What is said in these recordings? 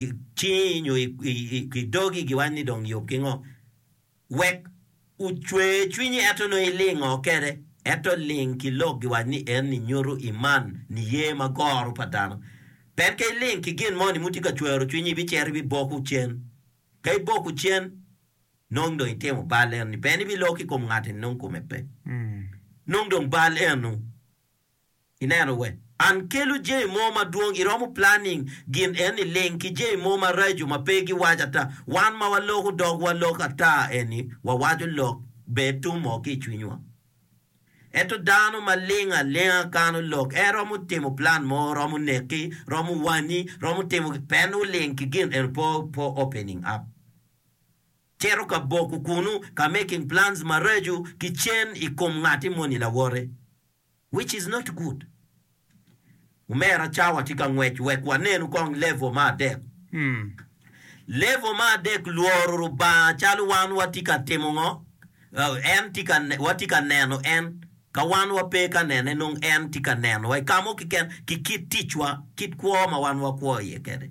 i cingi nyo i dogi giwac ni dong yub ki ngo? Wek ocwe cwinyi ento nongo iling ngo kede? Ento ling ki lok giwac ni en ni nyutu iman niye ma goro pa dano. Pien ka iling ki gin mo ni mutye ka cwero cwinyi ibicito ibiboko cen. Ka iboko cen nong dong itimo bal eno ni pien ibilor ki kom ngat eni nong kome pe. Nong dong bal eno. Ineno we? An kelo jami mo madwong, iromo planning gin eni ling ki jami mo maraco ma pe giwaco ata. Wan ma waloko dogwa lok ata eni wawaco lok ber tum mo ki i cwinywa. Ento dano ma ling alinga kano lok, en romo timo plan mo, romo neki, romo wanyi, romo timo gin, pen oling ki gin eni po po opening up. Cito ka boko kunu ka making plans maraco ki cen i kom ngati moni lawote. Which is not good. Omera cawa tye ka ngwec wek wanenu kong level me adek. Level me adek lworo Lubanga calo wan watye ka timo ngo? En tye ka watye ka neno en. Ka wan wape ka nene nongo en tye ka nenowa i kamo keken ki kit ticwa, kit kwo ma wan wakwo iye kede.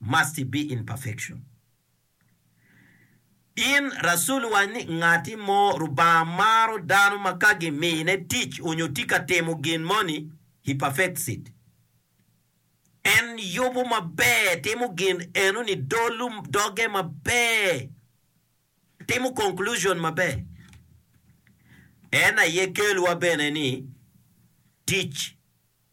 must be in perfection. In Rasul wac ni ngati mo Rubanga maro dano ma ka gimine tic onyo tye ka timo gin moni he perfects it. En yubu maber, timo gin enoni, dolu, doge maber, timo conclusion maber. En aye kelwa bene ni tic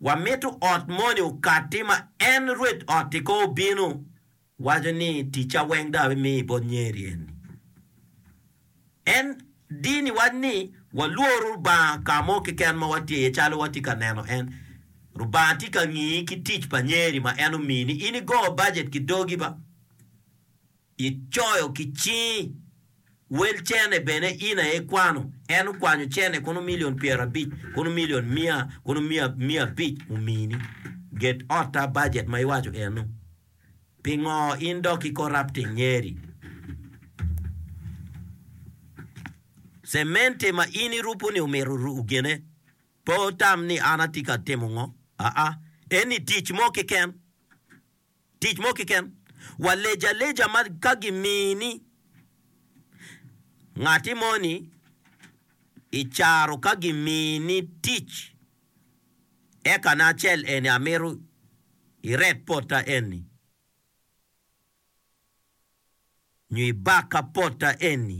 Wamito ot moni okatti ma en rwed ot-ti ko obino, waco ni, Ticca weng dong abimiyo bot nyeri eni. En dini waco ni walwor Lubanga ka mo keken ma watye iye calo watye ka neno en. Lubanga tye ka ngiyi ki tic pa nyeri ma en omiyi ni in igo bajet ki dogi ba? Icoyo ki cingi. Wel cene bene in aye ikwano. En okwanyo cene kono milion pyerabic, kono milion mia, kono mia mia abic omini. Get otta budget ma iwaco eno. Pingo in dok ki corrupting nyeri? Cementi ma in irupu ni omito ruku gine, pe otam ni an atye ka timo ngo, aa, eni tic mo keken. Tic mo kiken, wa lec aleja ma ka gimini ngati mo ni i caro ka gimini tic eka na acel eni amito iret potta eni nyo ibaka potta eni.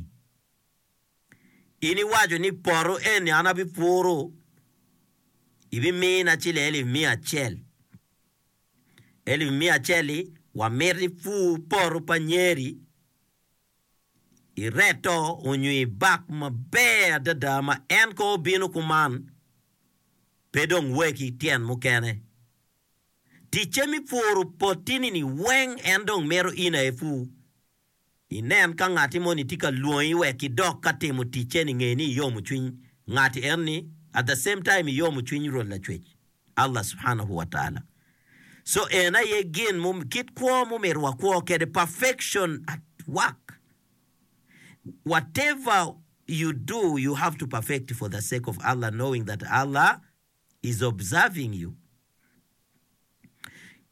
In iwaco ni poto eni an abipuru ibimina ci lelo i miya acel. Elif miya acel-li, Wamiti pur poto pa nyeri i reto onyo i bak maber adada ma en kong obino kuman, pe dong weki tyen mukene. Ticce mi puro poti-ni-ni weng en dong mito in aye pur. Inen ka ngatti moni tye ka lwongi wek idok ka timo ticce ni nge ni iyomo cwiny ngatti en ni at the same time iyomo cwiny Rwot Lacwec Allah subhanahu wa taala so en aye gin mo kit kwo ma omyero wakwo kede perfection at work whatever you do you have to perfect for the sake of Allah knowing that Allah is observing you.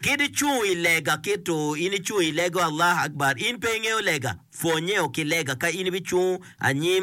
Kit icung i lega kit to in icung i lego Allah Akbar in pe ingeyo lega pwonye o ki lega ka in ibicung anyim